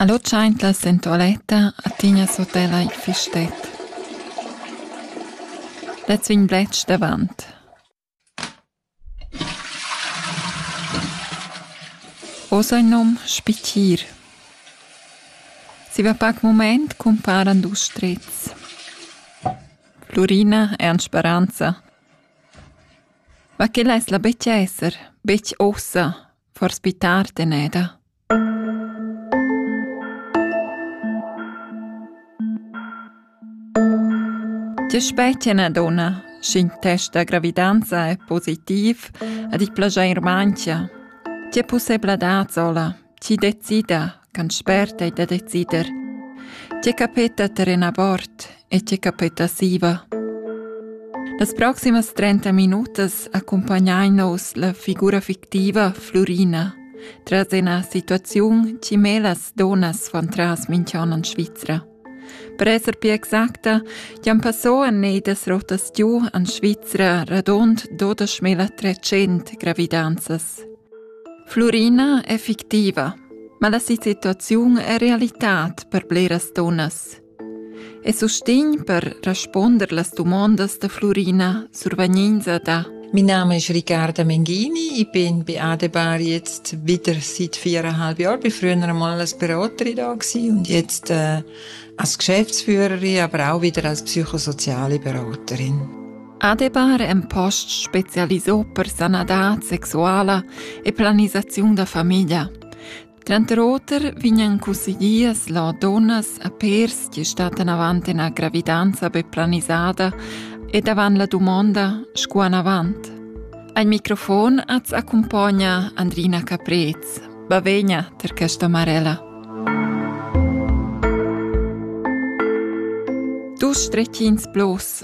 Allo tschaintla sen tualetta a tignas hotel ei fistet. Lez vegn bletsch davant. Oz ei num Spittir. Zieva pac mument cumparan dus strets. Flurina e Ans Speranza. Ma che less la betg esser, betg ussa, forsa pli tard eneda. Tge specie na donna, sch'in test da gravidanza è positiv ad ich plaschair manchia? Tge pussebladad sola? Ti decida, can spert ei da decider. Tge capeta terren abort e tge capeta siva. Las proximas 30 minutas accompagnein nos la figura fictiva Flurina tras ina situaziun che melas donas van tras minch'an en Svizra. Per esser più exacta, jan passò a nedas rotas giù en Svizra radund 12.300 gravidanzas. Flurina è fictiva, ma la situaziun è realitad per bleras dunnas. E sustegn per responder las dumondas da Flurina survegninza da Mein Name ist Ricarda Mengini, ich bin bei Adebar jetzt wieder seit viereinhalb Jahren, bin früher einmal als Beraterin da und jetzt äh, als Geschäftsführerin, aber auch wieder als psychosoziale Beraterin. Adebar en posts specialisò per sanadad sexuala e planisaziun da famiglia. Tranter oter vegnan cusseglias la dunnas a pers che stattan avant ina gravidanza be planisada ed avant la dumonda sco anavant. Al microfon az accumpogna Andrina Caprez. Bavegna ter questa Marella. Dus stretchins plus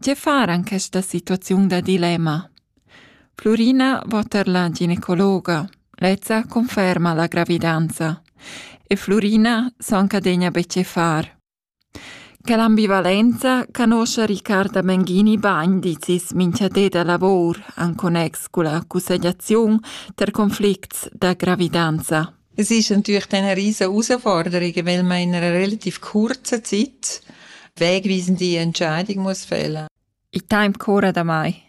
Tge far en questa situaziun da dilemma? Flurina va tar la ginecologa. Lezza conferma la gravidanza. E Flurina s'encadegna be tge far. Che l'ambivalenza conoscia Riccarda Menghini bagn, dizis minchadé da lavor en connex cun la cussegliaziun ter conflicts da gravidanza. Es ist natürlich dann eine riesen Herausforderung, weil man in einer relativ kurzen Zeit wegweisende Entscheidung muss fällen. I temp cura da mai.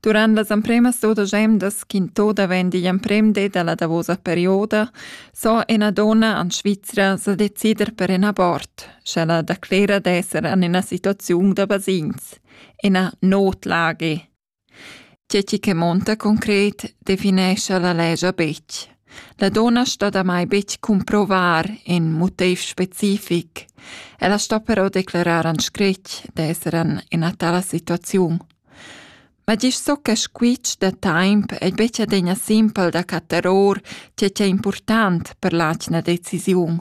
Durant las empremas dudesch emdas ch'in toda vegn digl emprem di dalla davosa perioda, so ina donna an Svizra sa decider per in abort, sch'ella declera d'esser an ina situaziun da basins, ina notlage. Tge chi che monta concret definescha la legia betg. La donna sto damai betg cumprovar in motiv specific. Ella sto però declerar en scrit d'esser en ina tala situaziun. Ma gist so che squitsch da taimp ei betg adegna simpel da cattar or tge ch'è important per l'atgna decisiun.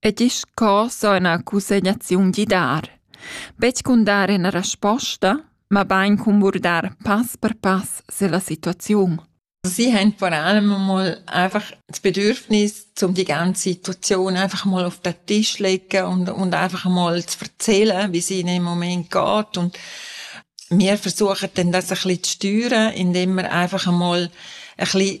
e disch co so üna cussegnaziun di dar. Betg cun dar üna resposta, mabain cun burdar pass per pass se la situaziun. Sie haben vor allem mal einfach das Bedürfnis, um die ganze Situation einfach mal auf den Tisch zu legen und, und einfach mal zu erzählen, wie es ihnen im Moment geht. Und wir versuchen dann das ein bisschen zu steuern, indem wir einfach einmal ein bisschen